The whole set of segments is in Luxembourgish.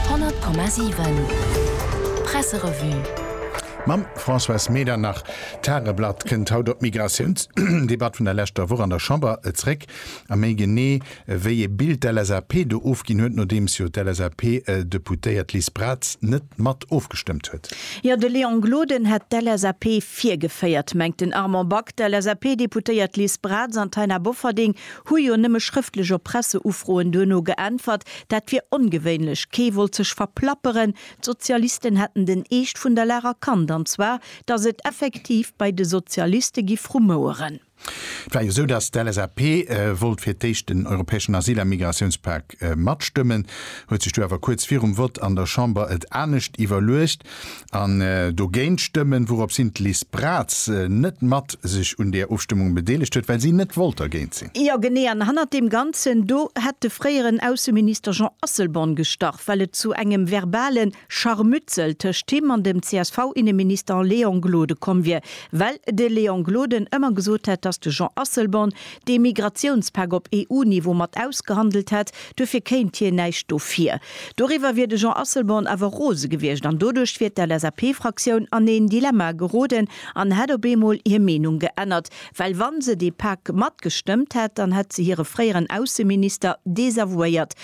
100,7 Presserevue. Mam Françoise Medernach. D'Tageblatt kënnt haut op d'Migratiounsdebatt vun der leschter Woch an der Chamber zréck, a méi genee wéi ee Bild d'LSAP do ofginn huet, nodeems jo d'LSAP-Deputéiert Liz Braz net mat ofgestëmmt huet. Jo, de Léon Gloden hätt d'LSAP virgeféiert, mengt den Armand Back. D'LSAP-Deputéiert Liz Braz an d'Taina Bofferding Hu jo nëmme schrëftlech op Presseufroen duerno geäntwert. Dat wier ongewéinlech. Kee wollt sech verplapperen. D'Sozialisten hätten den Eescht vun der Lag erkannt, an zwar, datt et effektiv bei de Sozialiste giff rumoueren. Et war jo esou, datt d'LSAP wollt fir d'éischt den europäeschen Asyl a Migratiounspak Vertrag matstëmmen, huet sech du awer kuerz virum Vott an der Chamber et anescht iwwerluecht an dogéint stëmmen, wourops hin d'Liz Braz net mat sech un deer Ofstëmmung bedeelegt huet, well si net wollt dergéint sinn. Jo genee, an hannert deem Ganzen do hätt de fréieren Ausseminister Jean Asselborn gestach, well et zu engem verbalen Scharmützel tëscht him an dem CSV-Inneminister Léon Gloden komm wier, well de Léon Gloden ëmmer gesot hätt, datt de Jean Asselborn dee Migratiounspak op EU-Niveau mat ausgehandelt hätt, duerfir kéint hien näischt dofir. Doriwwer wier de Jean Asselborn awer rose gewiescht an doduerch wier d'LSAP-Fraktioun an een Dilemma geroden an hätt op eemol hir Meenung geännert, Well wa se dee Pak matgestëmmt hätt, dann hätt se hire fréieren Ausseminister desavouéiert.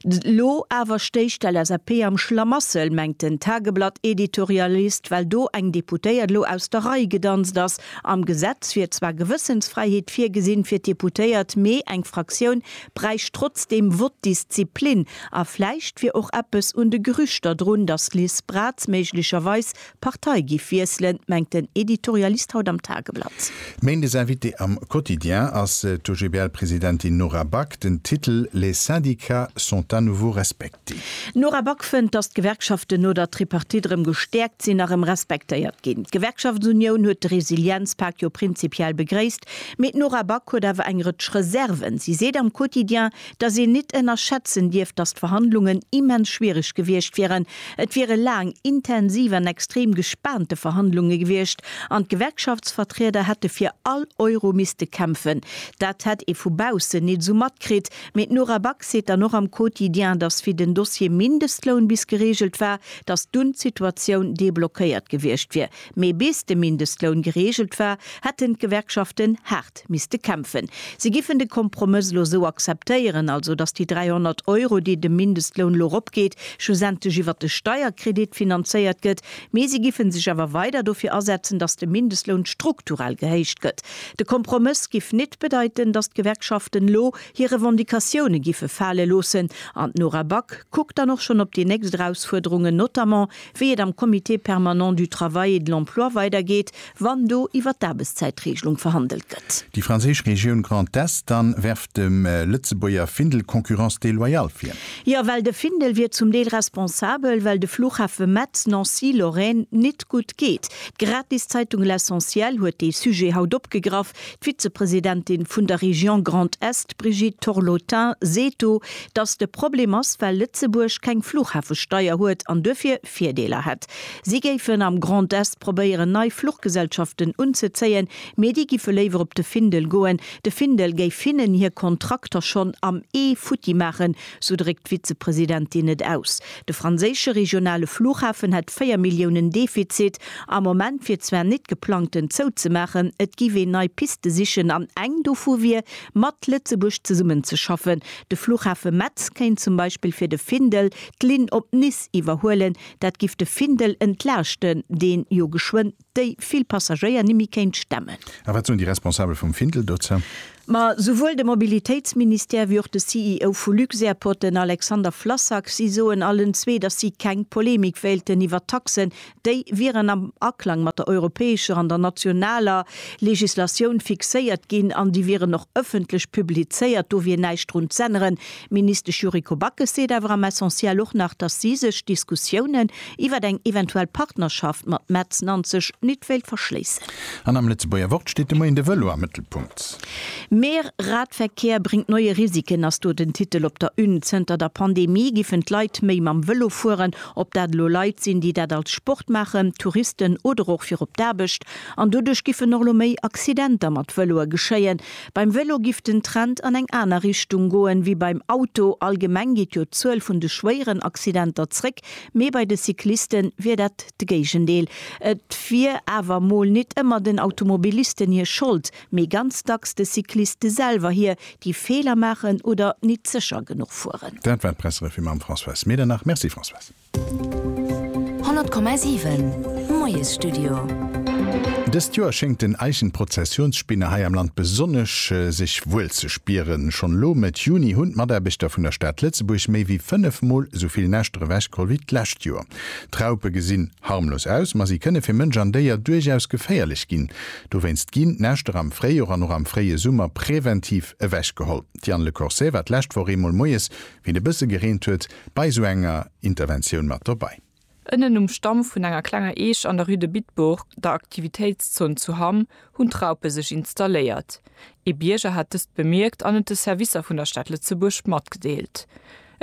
Elo awer stéich d'LSAP am Schlamassel, mengt den Tageblatt-Editorialist, well do eng Deputéiert elo aus der Rei gedanzt ass. Am Gesetz wier zwar Gewëssensfräiheet virgesinn fir d'Deputéiert, mee eng Fraktioun bräicht trotzdeem Vote-Disziplin. A vläicht wier och eppes un de Gerüchter drun, datt d'Liz Braz méiglecherweis Partei giff wiesselen, mengt den Editorialist haut am Tageblatt. Méindes Invité am Quotidien ass d'OGBL-Presidentin Nora Back. Den Titel Les syndicats sont à nouveau respectés. D'Nora Back fënnt, datt d'Gewerkschaften no der Tripartite erëm gestäerkt sinn a rëm respektéiert ginn. D'Gewerkschaftsunioun huet de Resilienzpak jo prinzipiell begréisst, mee d'Nora Back huet awer eng Rëtsch Reserven. Si seet am Quotidien, datt een nit ënnerschätzen dierf, datt d'Verhandlungen immens schwiereg gewiescht wieren. Et wiere laang, intensiv an extrem gespaante Verhandlunge gewiescht an d'Gewerkschaftsvertrieder hätte fir all Euro misste kämpfen. Dat hätt ee vu baussen nit esou matkritt, mee d'Nora Back seet dann och am Quotidien, datt wéi den Dossier Mindestloun bis gereegelt war, datt dunn d'Situatioun deblockéiert gewiescht wier. Mee bis de Mindestloun gereegelt war, hätten d'Gewerkschaften haart misste kämpfen. Si giffen de Kompromëss elo esou akzeptéieren, also datt déi 300 Euro, déi de Mindestloun elo eropgeet, schlussendlech iwwer de Steierkredit finanzéiert gëtt. Mee si giffe sech awer weider dofir asetzen, datt de Mindestloun strukturell gehéicht gëtt. De Kompromëss giff nit bedeiten, datt d'Gewerkschaften elo hir Revendicatioune giffe fale loossen. An d'Nora Back kuckt dann och schonn op déi nächst Erausfuerderungen, notamment wéi et am Comité permanent du travail et de l'emploi weidergeet, wann do iwwer d'Aarbechtszäitregelung verhandelt gëtt. Déi franséisch Regioun Grand Est dann werft dem Lëtzebuerger Findel Concurrence déloyale vir. Jo, well de Findel wier zum Deel responsabel, well de Flughafe Metz, Nancy, Lorraine nit gutt geet. D'Gratiszeitung L'Essentiel huet dee Sujet haut opgegraff, D'Vizepresidentin vun der Région Grand Est, Brigitte Torlotin, seet do, datt de Problem ass, well Lëtzebuerg keng Fluchhafesteier huet an duerfir Virdeeler hätt. Si géifen am Grand Est probéieren, nei Fluchgesellschaften unzezéien, mee déi giffe léiwer op de Findel goen. De Findel géif hinnen hir Kontrakter schonn am Ee futti maachen, Sou dréckt d'Vizepresidentin et aus. De franséische regionale Flughafen hätt 4 Milliounen Defizit. Am Moment wier zwar nit geplangt en zouzemaachen, et giff een nei Piste sichen an eng dovu wier mat Lëtzebuerg zesummen ze schaffen. De Flughafe Metz kéint zum Beispill fir de Findel d'Linn op Nice iwwerhuelen. Dat giff de Findel entlaaschten, deen jo geschwënn. déi vill Passagéier nimmi kéint stemmen. A wat soen déi Responsabel vum Findel dozou? Ma souwuel de Mobilitéitsministère wéi och de CEO vu Luxairport, den Alexander Flassak, si soen allen zwee, datt si keng Polemik wéilten iwwer d'Taxen. Déi wieren am Aklang mat der europäescher an der nationaler Legislatioun fixéiert ginn an déi wieren och ëffentlech publizéiert. Do wier näischt drun z'änneren, D'Ministesch Yuriko Backes seet awer am Essentiel och nach, datt si sech Diskussiounen iwwert eng eventuell Partnerschaft mat Metz Nanzeg nit wéilt verschléissen. An am Lëtzebuerger Wort steet de Moien de Vëlo am Mëttelpunkt. Meer, Radverkehr bringt neue Risiken ass do den Titel op der Une. Zënter der Pandemie giffen d'Leit méi mam Vëlo fueren. Ob dat elo Leit sinn, déi dat als Sport maachen, Touristen oder och fir op d'Aarbecht. An doduerch giffen och elo méi Accidenter mat Vëloe geschéien. Beim Velo giff den Trend an eng aner Richtung goen wéi beim Auto. Allgemeng geet jo d'Zuel vun de schwéieren Accidenter zréck, mee bei de Cycliste wier dat d'Géigendeel. Et wier awer mol nit ëmmer den Automobilisten hir Schold, mee ganz dacks de Cycliste selwer hir, déi Feeler maachen oder nit sécher genuch fueren. Dat war d'Presserevue mam Françoise Medernach. Merci Françoise. 100,7 Moiesstudio. Dëst Joer schéngt den Eischen Prozessionsspinner hei am Land besonnesch sech wuel ze spieren. Schonn elo Mëtt Juni hunn d'Mataarbechter vun der Stad Lëtzebuerg méi wéi 5 Mol esou vill Näschter ewechgeholl wéi d'lescht Joer. D'Raupe gesinn harmlos aus, ma si kënne fir Mënsch an Déier duerchaus geféierlech ginn. Dowéinst ginn d'Näschter am Fréijor an och am fréie Summer präventiv ewechgeholl. D'Diane Lecorsaire war d'lescht Woch eemol moies, wéi et e bësse gereent huet, Bei esou enger Interventioun mat dobei. Ënnen um Stamm vun enger klenger Eech an der Rue de Bitburg, der Aktivitéitszon zu Hamm, hunn d'Raupe sech installéiert. Ee Bierger hat dëst bemierkt an et de Servicer vun der Stad Lëtzebuerg matgedeelt.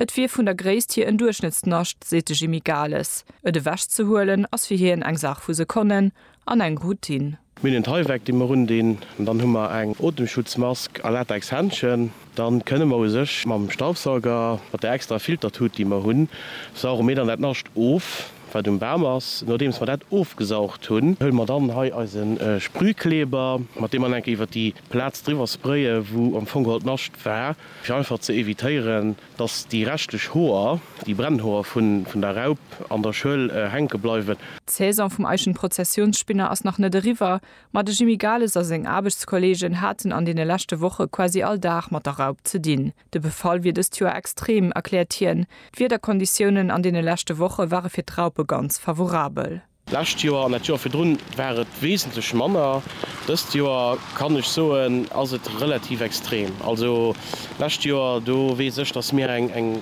Et wier vun der Gréisst hier en Duerchschnëttsnascht, seet de Jimmy Gales. Et ewechzehuelen ass fir hien eng Saach vu Sekonnen an eng Routine. Mir hunn en Tyvek, dee mer undinn, dann hu mer eng Otemschutzmask a Latexhändschen. Dann kënne mer u sech mam Staubsauger, mat där extra Filtertut, déi mer hunn, sauge mir dann dat Nascht of, wat um Bam ass. Nodeems mer dat ofgesaugt hunn, huele mer dann hei eise Sprühkleber, mat deem mer dann enke iwwert déi Plaz driwwer spraye wou am Fong geholl d'Nascht war, fir einfach ze evitéieren, Dass déi reschtlech Hoer, déi Brennhoer vun der Raup an der Schuel hänke bleiwen. D'Saison vum Eichenprozessionsspinner ass nach net eriwwer, ma de Jimmy Gales a seng Aarbechtskolleegen haten an deene leschte Woche quasi all Dag mat der Raup ze dinn. De Befall wier dëst Joer extrem, erkläert hien. D'Wiederkonditiounen an deene leschte Woche ware fir d'Raupe ganz favorabel. D'lescht Joer an dat Joer virdrun war et wesentlech manner. Dëst Joer kann ech soen, ass et relativ extrem. Also d'lescht Joer, do weess ech, datt mir eng, eng,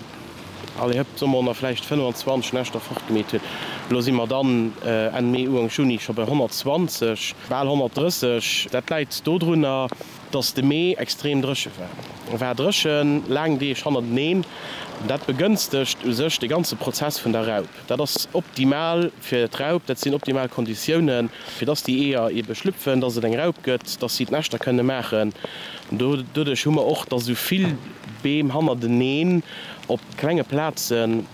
allez hëpp, soe mer honnert, vläicht 25 Näschter fortgemeet hunn. Elo si mer dann Enn Mee, Uank Juni scho bei 120, bal 130. Dat läit dodrunner, datt de Mee extrem dréche war. E war dréchen, laang Deeg hannerteneen. Dat begënstegt u sech de ganze Prozess vun der Raup. Dat ass optimal fir d'Raup, dat sinn optimal Konditiounen, fir dass déi Eeër eebe schlüpfen, dass et eng Raup gëtt, dass si d'Näschter kënne maachen. Doduerch hu mer och, dass esou vill Beem hannerteneen op klenge Plaze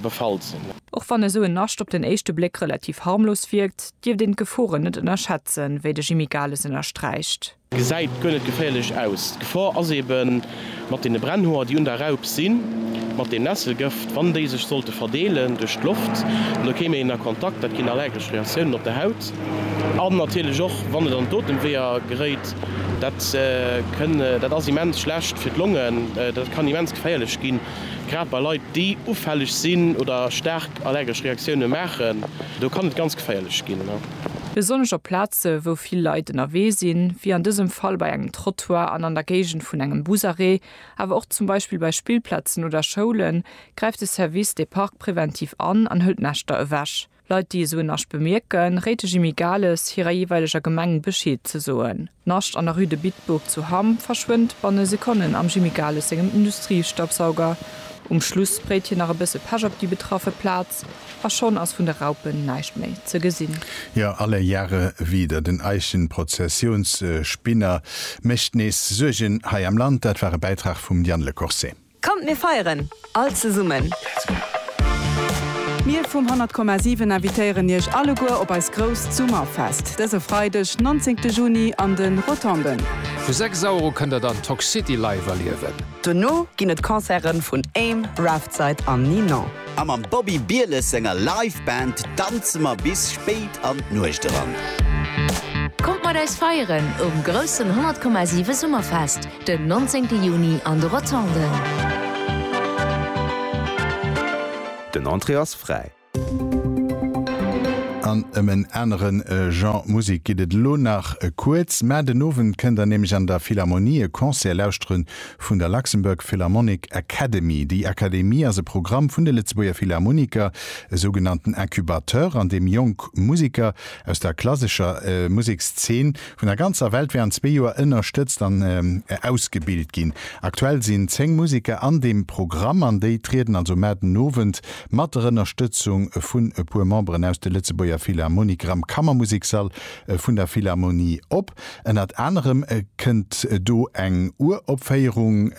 befall sinn. Och wann esou en Nascht op den éischte Bléck relativ harmlos wierkt, dierft een d'Geforen net ënnerschätzen, wéi de Jimmy Gales ënnersträicht. Gesäit guer net geféierlech aus. D'Gefor ass eben mat deene Brennhoer, déi un der Raup sinn, mat deem Nesselgëft, wann déi sech sollte verdeelen duerch d'Loft, da kéim een a Kontakt, dat ginn allergesch Reaktiounen op der Haut. An natierlech och, wann et an d'Otemweeër geréit, dat kënn, dat ass immens schlecht fir d'Longen, dat kann immens geféierlech ginn, grad bei Leit, déi ufälleg sinn oder staark allergesch Reaktioune maachen, do kann et ganz geféierlech ginn. Besonnesch op Plaze wou vill Leit ënnerwee sinn, wéi an dësem Fall bei engem Trottoir an an der Géigend vun engem Busarrêt, awer och zum Beispill bei Spillplazen oder Schoulen, gräift de Service des Parcs preventiv an an hëlt Näschter ewech. Leit déi esou en Nascht bemierken, réit de Jimmy Gales hirer jeeweileger Gemeng Bescheed ze soen. D'Nascht an der Rue de Bitburg zu Hamm verschwënnt banne Sekonnen am Jimmy Gales sengem Industriestaubsauger. Um Schluss spréit hien nach e bësse Pech op déi betraffe Plaz. A schonn ass vun de Raupen näischt méi ze gesinn. Jo, alle Jahre wieder, den Eichenprozessionsspinner mécht nees Suergen hei am Land. Dat war e Bäitrag vum Yann Le Corset. Kommt mir feieren all zesummen! Mir vum 100,7 invitéieren Iech alleguer op eist grousst Summerfest dëse Freideg 19 Juni an de Rotonden. Vu 6 Auer u kënnt der dann Toxcity live erliewen. Dono ginn et Concerte vun Aim, Raftside an Ninon. A mam Bobby Bieles senger Live Band danze mer bis spéit an d'Nuecht eran. Kommt mat eis feieren um groussen 100,7 Summerfest den 19 Juni an de Rotonden. Den Entrée ass fräi. An ëm en anere Genre Musek geet et elo nach kuerz, mä den Owend kënnt der nämlech an der Philharmonie e Concert lauschteren vun der Luxembourg Philharmonic Academy. Déi Akademie ass e Programm vun de Lëtzebuerger Philharmoniker, e sougenannten Incubateur, an deem jonk Museker aus der klassescher Musekszeen vun der ganzer Welt während zwee Joer ënnerstëtzt an ausgebilt ginn. Aktuell sinn 10 Museker an deem Programm an déi trieden also mar den Owend mat der Ënnerstëtzung vun e puer Memberen aus de Lëtzebuerger Philharmoniker am Kammermuseksall vun der Philharmonie op. Ënnert anerem kënnt do eng Uropféierung.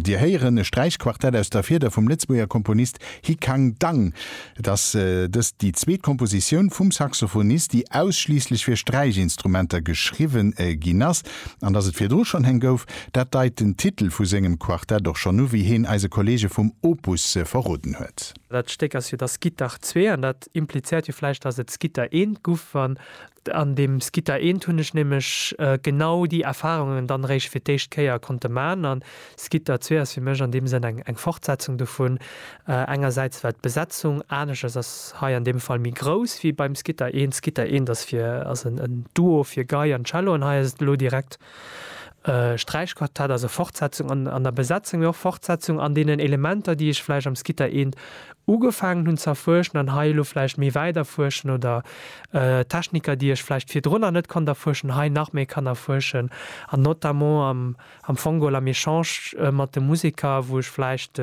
Dir héieren e Sträichquartett aus der Fieder vum Lëtzebuerger Komponist Hi Kang Dang. Et ass dëst déi zweet Kompositioun vum Saxophonist, déi ausschliisslech fir Sträichinstrumenter geschriwwe ginn ass. An dass et virdru schonn heng gouf, dat deit den Titel vu sengem Quartett och schonn u, wéi heen eise Kolleege vum Opus verroden huet. Dat Stéck ass jo Das Gittach ii, an dat implizéiert jo vläicht, dass et D'Gitter I guff, wann An deem Skitta eent hunn ech nämlech genau déi Erfahrungen dann eréischt fir d'éischt Kéier konnte man. An Skitta zwee ass fir mech an deem Sënn eng Fortsetzung dovun. Engersäits well d'Besetzung anescht ass, ass hei an deem Fall méi grouss wéi beim Skitta eent. Skitta eent ass fir ass en Duo fir Gei an Cello an hei ass et elo direkt Sträichquartett ass e Fortsetzung an an der Besetzung mé och Fortsetzung an denen Elementer déi ech vläicht am Skitta 1 ugefaangen hunn ze erfuerschen an hei elo vläicht méi wäit erfuerschen oder Techniker déi ech vläicht virdrunner net konnt erfuerschen hei nach méi kann erfuerschen an notamment am am Fongol am Echange mat de Museker wou ech vläicht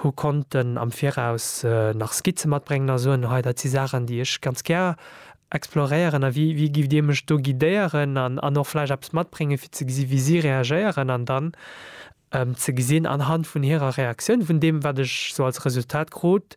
hu konnten am viraus nach Skizze matbréngen a soen hei dat si Saachen déi ech ganz gär exploréieren a wéi wéi gift Dir mech do guidéieren an an och vläicht eppes matbréngen fir ze gesi wéi si reagéieren an dann ze gesinn anhand vun hirer Reaktioun vun deem wat ech sou als Resultat krut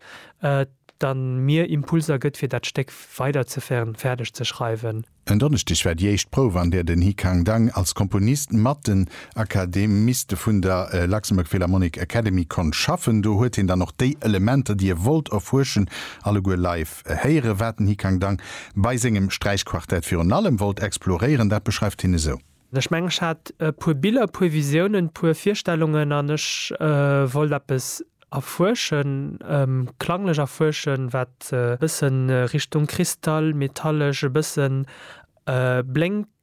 dann mir Impulser gëtt fir dat Stéck weiderzeféieren fäerdeg ze schreiwen. En Donneschdeg war déi éischt Prouf an där den Hi Khang Dang als Komponist mat den Akademiste vun der Luxembourg Philharmonic Academy konnt schaffen. Do huet hien dann och déi Elementer déi e wollt erfuerschen alleguer live héieren, wat den Hikang Dang bei sengem Sträichquartett virun allem wollt exploréieren. Dat beschreift hien esou. Ech mengen, ech hat e puer Biller, e puer Visiounen, e puer Virstellungen an ech wollt eppes erfuerschen, klanglech erfuerschen, wat e bësse Richtung Kristall, metallesch, e bësse blénkt.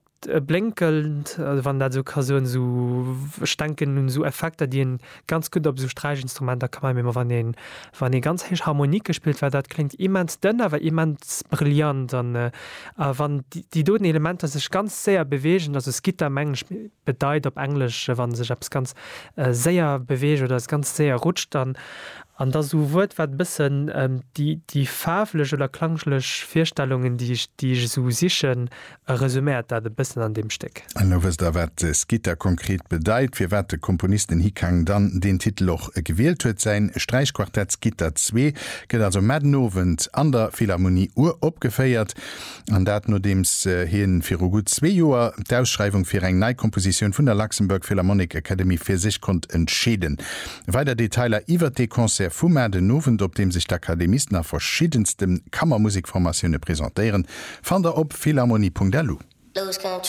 blénkend, wann een dat esou ka soen, esou, ech denken un esou Effekter, déi een ganz gutt op esou Sträichinstrumenter ka maachen, wann een, wann ee ganz héich Harmonike spillt, well dat kléngt immens dënn, awer immens brillant an wann déi doten Elementer sech ganz séier beweegen, also skitter mengen ech bedeit op Englesch, wann sech eppes ganz séier beweegt oder es ganz séier rutscht, dann an da esou e Wuert, wat e bëssen déi faarflech oder klanglech Virstellungen, déi ech, déi ech esou sichen, E resuméiert dat e bëssen an deem Stéck. Elo wësst der, wat Skitta konkret bedeit, firwat de Komponist den Hikang dann deen Titel och gewielt huet. Säin Sträichquartett Skitta Zwee gëtt also mar den Owend an der Philharmonie uropgeféiert, an dat nodeems hien viru gutt zwee Joer d'Ausschreiwung fir eng nei Kompositioun vun der Luxembourg Philharmonic Academy fir sech konnt entscheeden. Weider Detailer iwwert dee Concert vu mar den Owend, op deem sech d'Akademisten a verschiddenste Kammermusikformatioune presentéieren, fannt der op philharmonie.lu.